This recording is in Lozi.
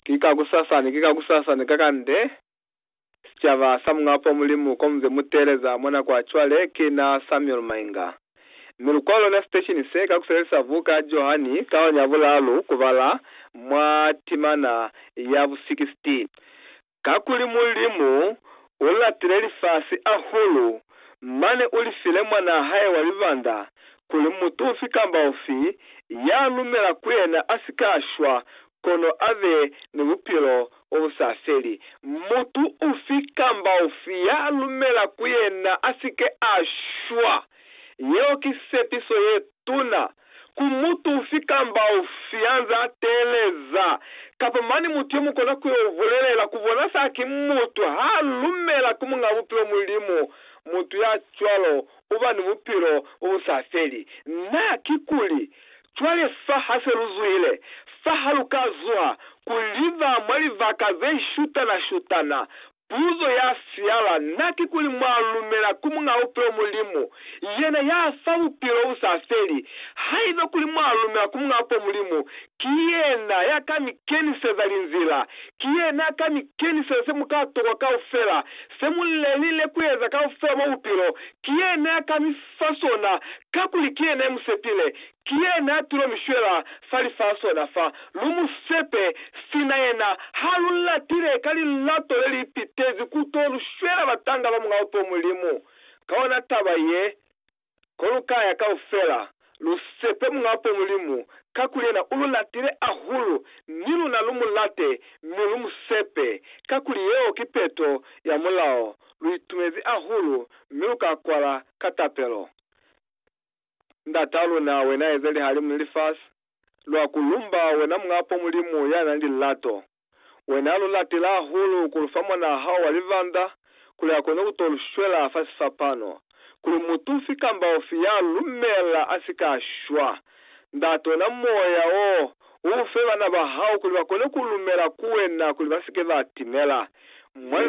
Ki ka kusasani, ki ka kusasani kakande, sicaba sa Muñapo Mulimu ko muze mu teeleza mwa nako ya cwale ki na Samuel Mainga. Mi lukwalo lwa siteshini se ka kusebelisa buka ya Johani kaoni ya bulalu kubala mwa timana ya bu 60. Kakuli Mulimu u latile lifasi ahulu, mane u li file Mwanaa hae wa libanda, kuli mutu ufi kamba ufi ya lumela ku yena a si ka shwa, kono a be ni bupilo bo bu sa feli. Mutu ufi kamba ufi ya lumela ku yena a si ke a shwa. Yeo ki sepiso ye tuna ku mutu ufi kamba ufi hanza teeleza, kapa mane mutu yo mukona kuyo bulelela ku bona sa ki mutu ha lumela ku Muñaa Bupilo Mulimu, mutu ya cwalo uba ni bupilo bobusafeli. Na, kikuli, cwale fa ha se lu zuhile, fa ha lu ka zuha, ku liba mwa libaka ze shutana-shutana, Puzo ya siyala na kikuli, Mwa lumela ku Muñ'a Bupilo Mulimu, yena ya fa bupilo bu sa feli? Haiba kuli mwa lumela ku Muñ'a Bupilo Mulimu, ki yena ya ka mi keniseza linzila. Ki yena ya ka mi keniseza se mu ka tokwa kaufela, se mu lelile ku eza kaufela mwa bupilo. Ki yena ya ka mi fa sona, kakuli ki yena ya mu sepile. Ki yena tulo mi shwela fa lifaa sona fa. Lu mu sepe, sina yena ha lu latile ka lilato le li pitezi ku to lu shwela batanga ba Mulao po Mulimu. Ka ona taba ye, ko lu ka ya kaufela, lu sepe Mulao po Mulimu, kakuli yena u lu latile ahulu, ni luna lu mu late mi lu mu sepe, kakuli yeo ki peto ya Mulao. Lu itumezi ahulu mi lu ka kwala ka tapelo. Ndata luna, wena eze lihalimu ni lifasi, lwa ku lumba wena Muñapo Mulimu ya na ni lilato. Wena lu latela hahulu ku lu fa mwanaa hao wa libanda kuli a kone ku to lu shwela fa sifapano, kuli mutu ufi kamba ufi ya lu lumela a si ka shwa. Ndate ona moya wo, u fe bana ba hao kuli ba kone ku lumela ku wena kuli ba si ke ba timela. Mwanuna.